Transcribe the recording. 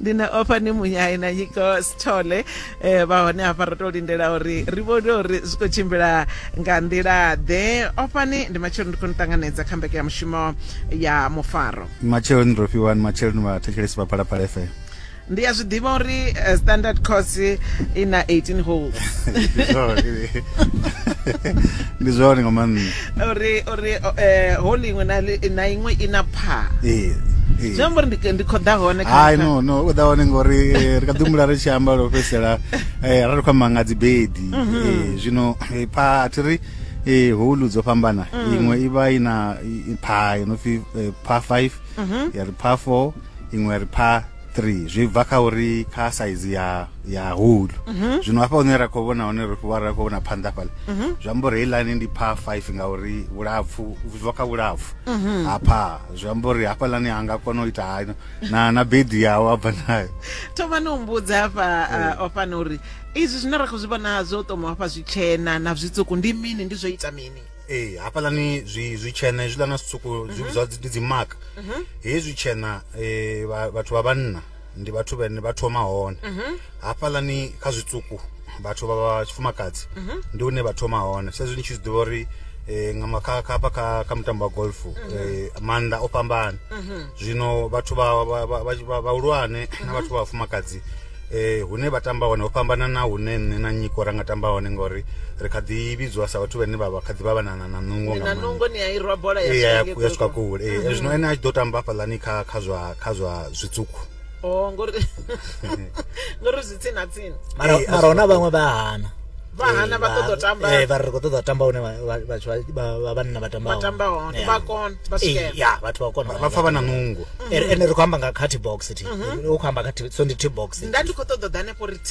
ndi na ofha ni munyai na nyiko sithole eh, vha hone hafha ro to lindela uri ri vhone uri zwi khou tshimbila nga nḓila ḓe ofhani ndi matshelo ndi khou ni ṱanganedza kha mbeke ya mushumo ya mufaro matsheloni ro fhiwani matsheloni vhathetshelesi vha phalaphala fm ndi a zwi ḓivha uri eh, standard course i na 18 holes ndi zwone nga maanḓa uri uri eh, hole iṅwe na iṅwe i na pha zwi amba uri ndi khou ḓa hone hai no no u ḓa hone ngori eh, ri kha ḓi humbula ri tshi amba lwo fhedzisela eh, ra ri khou amba nga dzibedi mhm. zwino pha a thi ri e holu dzo fhambana mm. iṅwe i vha i na pha yo no pfi pha 5 mhm. ya ri pha 4 iṅwe ri pha 3 zwi bva kha uri kha saizi ya ya hulu mhm. zwino hafha hune ra khou vhona hone ri fhiwa ra khou vhona phanḓa fhala mhm. zwi amba uri heiḽani ndi pha 5 ngauri vhulapfu zwi bva kha vhulapfu mhm. hafha zwi amba uri hafhaḽani ha nga kona u ita hayo na na bedi yawo a bva nayo thoma ni humbudza hafha eh. o fana uri izwi zwine ra khou zwi vhona zwo toma hafha zwitshena na zwitsuku ndi mini ndi zwo ita mini ee hafhaḽani zwi zwi tshena hezwiḽa na zwitswuku mhm. zwi vhidzwa ndi dzi mark mhm. hezwi tshena eh, vhathu vha vhanna ndi vhathu vhene vha thoma hone mhm. hafhaḽani kha zwitswuku vhathu vha vha tshifumakadzi ndi hune vha thoma hone sa izwi ni tshi zwi ḓivha uri eh, nga makha kha hafha kha kha mutambo wa golf eh, maanḓa o fhambana zwino vhathu vha vhahulwane na vhathu vha vhafumakadzi eh, hune vha tamba hone ho fhambana na hune nṋe na nyiko ra nga tamba hone ngori ri kha ḓi vhidzwa sa vhathu vhane vha vha kha ḓi vha vhanana na nungo nga nungo ni a irwa bola ya eh, swika ya swika kule eh, mhm. zwino ene a tshi ḓo tamba hafhaḽani kha kha zwa kha zwa zwitswuku oh ngori ngori zwi tsini na tsini mara eh, mara hona vhaṅwe vha hana vha hana vha ṱoḓa u tamba eh vha ri khou ṱoḓa u tamba hune vhathu vha vhanna vha tamba vha tamba hone vha kona vha swikelela ya vhathu vha kona vha pfa vha na nungo ene ri khou amba nga kha t box thi u khou amba kha so ndi t box nda ndi khou ṱoḓa u ḓa hanefho ri t